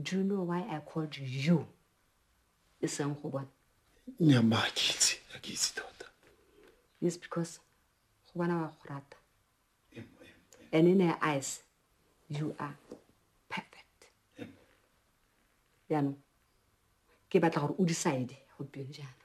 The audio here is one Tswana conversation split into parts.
Do you know why I called you? Isang go bona. Nya ma kitse, a kitse tota. Yes because go bona wa go rata. And in her eyes, you are perfect. Yaanong ke batla gore o decide go teng jaana.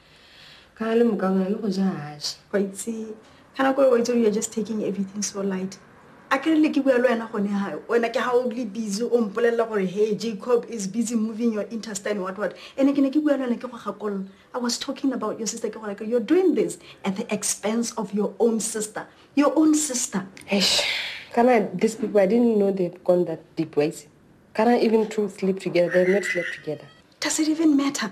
Ka le mokaba le go ja haje. Go itse kana go o itse you're just taking everything so light. A ke le ke bua le wena gone ha wena ke ha o le busy o mpolelela gore hey Jacob is busy moving your intestine what what. Ene ke ne ke bua le wena ke go gakololo. I was talking about your sister ke gore you're doing this at the expense of your own sister. Your own sister. Eish. Kana these people I didn't know they'd gone that deep ways. Kana even two sleep together, they've not slept together. Does it even matter?